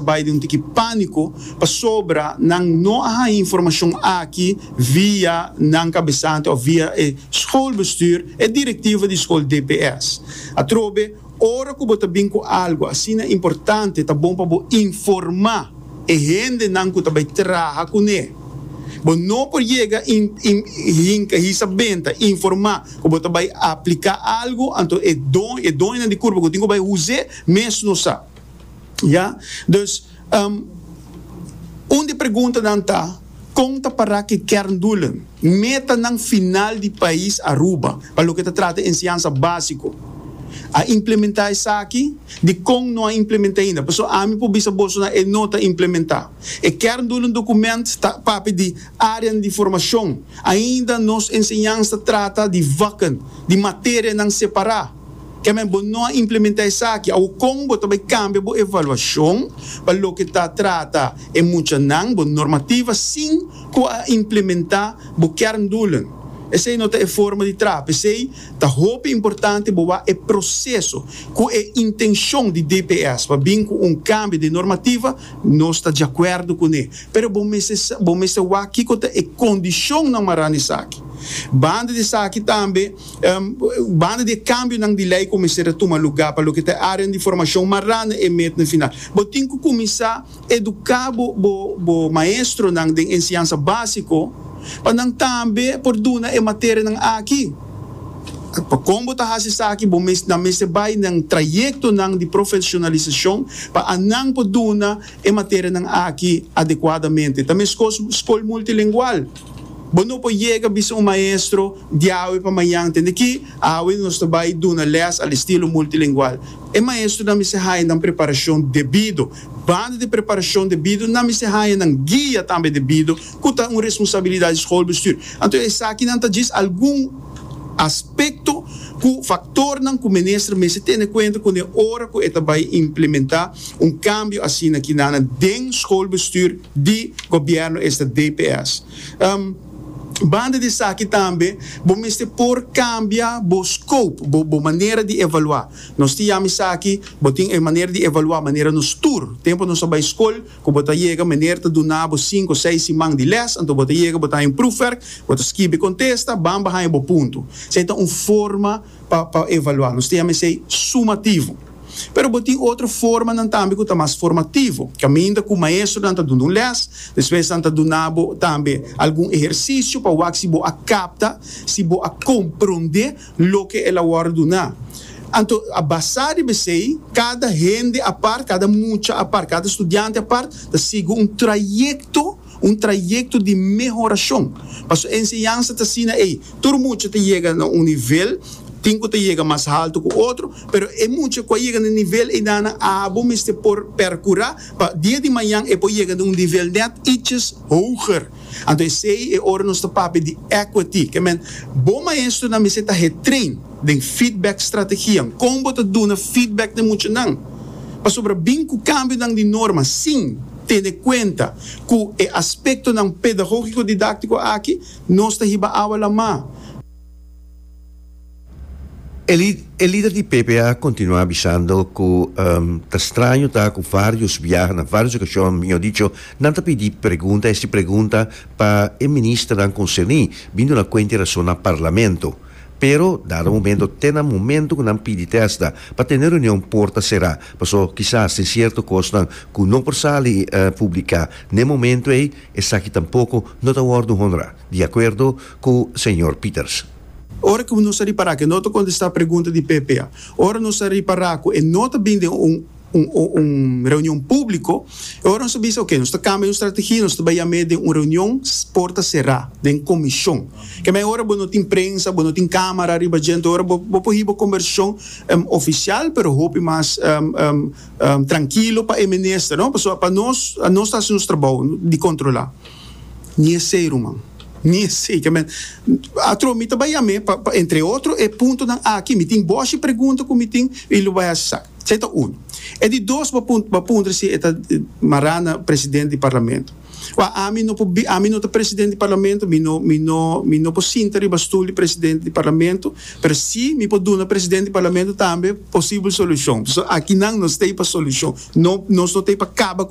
bai den un tiki panico pasobra nan no a haya informacion aki via nan cabesante of via e schoolbestuur, e directiva di school dps. Atrobe, ora cu bo ta bin cu algo asina importante ta bon pa bo informa e hende nan cu ta bai traha cu ne. Bo no por yega in in hinca hisa benta informa cu bo ta bai aplica algo anto e doño e doñonan di curpa cu tin cu bai huze mes no sa. Ya. Dus, un di preguntanan ta, Kon ta para ki kerndoelen, metanan final di pais Aruba pa loke ta trata enseñansa básiko? A implementá esaki? Dikon no a implementá ainda? Pasobra ami por bisa bosonan e no ta implementá. E kerndoelen dokument ta papia di áreanan di formashon. Ainda nos enseñansa ta trata di vakken, di materianan separá. Kèmen bo no a implementá esaki, awor kon bo ta bai kambia bo evaluashon pa loke ta trata e muchanan, bo normativa, sin ku a implementá bo kerndoelen? Esei no ta e forma di traha. P'esei ta hopi importante bo wak e proseso ku e intenshon di DPS pa bin ku un kambio den normativa, nos ta diakuerdo kuné. Pero bo mester sa, bo mester wak kiko ta e kondishonnan mará na esaki. Banda di esaki tambe. Banda di e kambionan di lei ku mester a tuma lugá pa loke ta e áreanan di formashon mará na e met na final, bo tin ku kuminsá eduká bo maestronan den enseñansa básiko pa nan tambe por duna e materianan aki. Pa kon bo ta hasi esaki bo nan mester bai na trayektonan di profeshonalisashon pa anan por duna e materianan aki adekuadamente. Ta meskos skol multilengual. Bo no por yega bisa un maestro di awe pa mañan. Tende ki, awe nos ta bai duna lès al estilo multilingual. E maestrunan mester haña nan preparacion debido. Banda di preparacion debido, nan mester haña nan guia tambe debido, cu ta un responsabilidad di schoolbestuur. Anto esakinan ta djis algun aspecto cu factornan cu minister mester tene cuenta cune ora cu e ta bai implementa un cambio asina ki nana den schoolbestuur. di Gobierno esta dps. Banda di esaki tambe bo mester por cambia bo scope, bo bo manera di evalua. Nos tin yama esaki, bo tin e manera di evalua manera nos tur, tempo nos a bay scol cu bo ta yega meneer ta duna bo cinco, seis siman di les, anto bo ta yega bo ta haña un proefwerk, bo ta skibi contesta, bamba haña bo punto. Esey ta un forma. pa evaluá. Nos ta yama esei sumativo. Pero bo tin otro formanan tambe ku ta mas formativo, kaminda ku maestronan ta duna un lès, despues nan ta duna bo tambe algun ehersisio pa wak si bo a kapta, si bo a komprondé loke el a wòrdu duná. Anto a basá riba esei, kada hende apart, kada mucha apart, kada studiante apart ta sigui un trayekto. un trayekto di mehorashon. Pasobra e enseñansa ta asina ei, tur mucha ta yega na un nivel, tin ku ta yega mas haltu ku otro, pero e mucha ku a yega na e nivel einanan abo mester por perkurá pa dia di mañan e por yega na un nivel nèt iches hoger. Anto esei e ora nos ta papia di equity. Ke men, Bo maestronan mester ta hertrain den feedback strategianan. Kon bo ta duna feedback na muchanan pasobra bin ku kambionan di norma? Sin. Tene kuenta ku e aspektonan pedagógiko-didáktiko aki nos ta hiba awa lamá. E lider di PP a kontinuá bisando ku ta straño ta ku vários biaha na vários okashon, mihó dicho, nan ta pidi pregunta esti pregunta pa e ministernan konserní, bin duna kuenta e rason na parlamento. Pero dado momento te na momento cu nan pidi testa pa tene reunion porta cera, paso kisas tin cierto cosnan cu no por sali publica n'e momento ey, esaki tampoco no ta wordo honra, di acuerdo cu señor Pieterse. Ora cu nos a ripara cu e no ta contesta pregunta di ppa, ora nos a ripara cu e no ta bin den un. un reunion públiko, e ora nos ta bisa oke, nos ta kambia nos strategia, nos ta bai yam'é den un reunion porta será, den komishon. Ke mei ora bo no tin prensa, bo no tin kámara ariba djente, e ora bo bo por hiba kombershon ofisial pero hopi mas trankilo pa e minister, no, pasobra pa nos, nos ta hasi nos trabou di kontrolá. Ni esei, ruman, ni esei. Ke men, atro mi ta bai yam'é pa pa entre otro e puntonan aki, mi tin boshi pregunta ku mi tin i lo bai hasi sa. Esei ta un. E di dos bo bo puntra si e ta mará na president di parlamento. Wak ami no por bi, ami no ta president di parlamento, mi no mi no mi no por sinta riba stul di president di parlamento, pero si mi por duna president di parlamento tambe posibel solucion. So aki nan nos ta ei pa solucion, no nos no ta ei pa kaba.